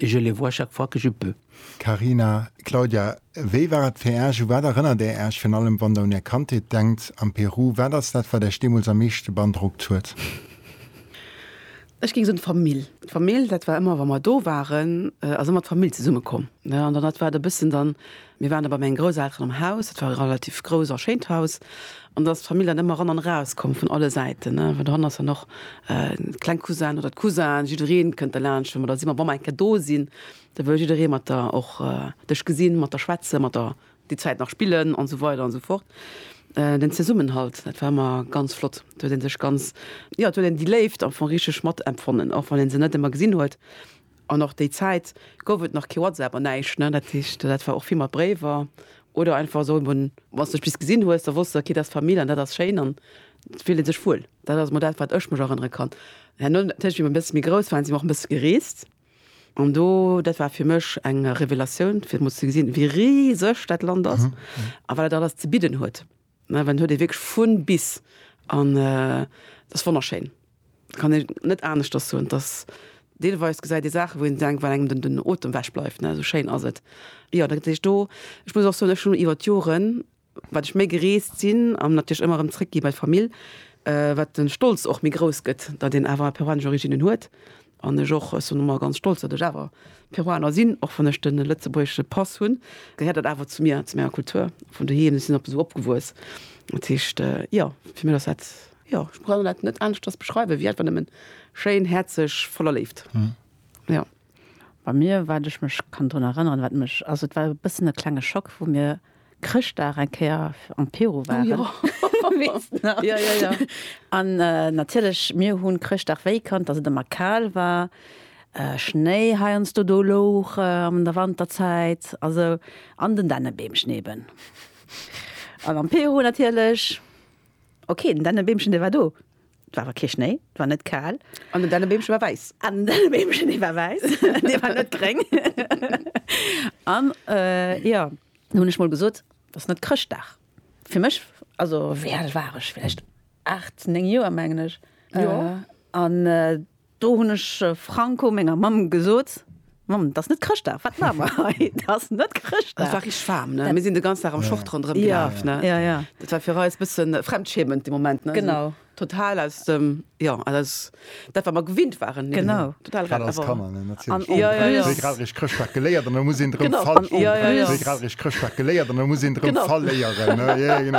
Et je les vois chaque fois que je peux. Carina, Claudia, wéi war et fir Äech? U wat erënnert Där Äech virun allem, wann Der un Är Kandheet denkt am Peru? Wat ass dat, wat Äech deemools am meeschte beandrockt huet? Ech géing soen, d'Famill. D'Famill, dat war ëmmer, wa mer do waren, ass ëmmer d'Famill zesummekomm. An dann, dat war et e bëssen dann, Mir waren da bei mengen Grousselteren am Haus, dat war e relativ grouss a schéint Haus, an da ass d'Famill dann ëmmer eran an eraus komm vun alle Säiten, well dohannen ass dann och kleng Cousinen oder d'Cousinen, jiddereen kënnt derlaanscht, well mer da si mer bam eng Kéier do sinn, da wëll jiddereen mat der och dech gesinn, mat der schwätzen, mat der déi Zäit nach spillen an esou weider an esou fort. Den Zesummenhalt, dat war ëmmer ganz flott, do huet ee sech ganz, jo do huet een déi Léift am Fong richteg mat empfonnen, och wann ee se net ëmmer gesinn huet. An och déi Zäit gouf et nach kee WhatsApp an näischt, ne? Dat heescht, dat war och vill mat Bréiwer oder einfach esou eeben, wann s de spéit gesinn hues, da wosst s de, okay, dat ass d'Famill an dat ass schéin an et fillt ee sech wuel. Dat ass emol dat, wat ech mech erënnere kann. Herno natierlech, wéi mer e bësse méi grouss waren, si mer och e bësse gereest an do, dat war fir mech eng Revelatioun, fir emol ze gesinn, wéi riseg dat Land ass a wat dat alles ze bidden huet. Mä en huet ee wierklech vun bis an et ass wonnerschéin, et kann een net aneschters soen, et ass deelweis gesäit ee Saachen, wou een denkt, well engem den Otem ewech bleift, esou schéin ass et. Jo, dat heescht do, ech muss och soen, ech hunn iwwer d'Joren, wat ech méi gereest sinn an natierlech ëmmer erëm zréckgi bei d'Famill, wat de Stolz och méi grouss gëtt, datt een awer peruanesch Originen huet, An ech och. Ech sinn ëmmer ganz stolz, datt ech awer Peruaner sinn, och wann ech de lëtzebuergesche Pass hunn, gehéiert dat awer zu mir, zu menger Kultur vun doheem. Ech sinn op esou opgewuess. Dat heescht, jo, fir mech ass dat, jo, ech kann dat net aneschters beschreiwen, wéi einfach nëmmen schéin, häerzeg, voller Léift. Jo. Bei mir, wat ech mech kann drun erënneren, wat mech, also et war e bëssen e klenge Schock, wou mir Chrëschtdag eng Kéier am Peru waren, weess de nach? Jo, jo, jo. An natierlech, mir hunn Chrëschtdag wéi kannt, dass et ëmmer kal war, Schnéi heiansdo do louch an der Wanterzäit, also an den Dännebeemchen eben. An am Peru natierlech, ok, den Dännebeemchen, dee war do, et war awer kee Schnéi, et war net kal. An den Dännebeemchen war wäiss. An den Dännebeemchen, dee war wäiss, dee war net gréng. An, jo. Da hunn ech mol gesot, Et ass net Chrëschtdag. Fir mech, also wéi al war ech, vläicht aacht, néng Joer, mengen ech. An do hunn ech franco menger Mamm gesot, Mamm, et ass net Chrëschtdag, wat maache mer hei? Et ass net Chrëschtdag. Et war richteg waarm, ne? Mir sinn de ganzen Dag am Short ronderëm gelaf, ne? Jo, jo. Dat war fir eis e bësse Fremdschämen, dee Moment, ne? Genau. Total aus dem, jo, aus dat wat mer gewinnt waren. Genau. Total ran. Grad als Kanner, ne, natierlech. An en plus. Wéi grad rich Chrëschtdag geléiert an da muss een drem verl. Genau. An en plus. Wéi grad rich Chrëschtdag geléiert an da muss een drem verléieren, ne, jo, jo, genau.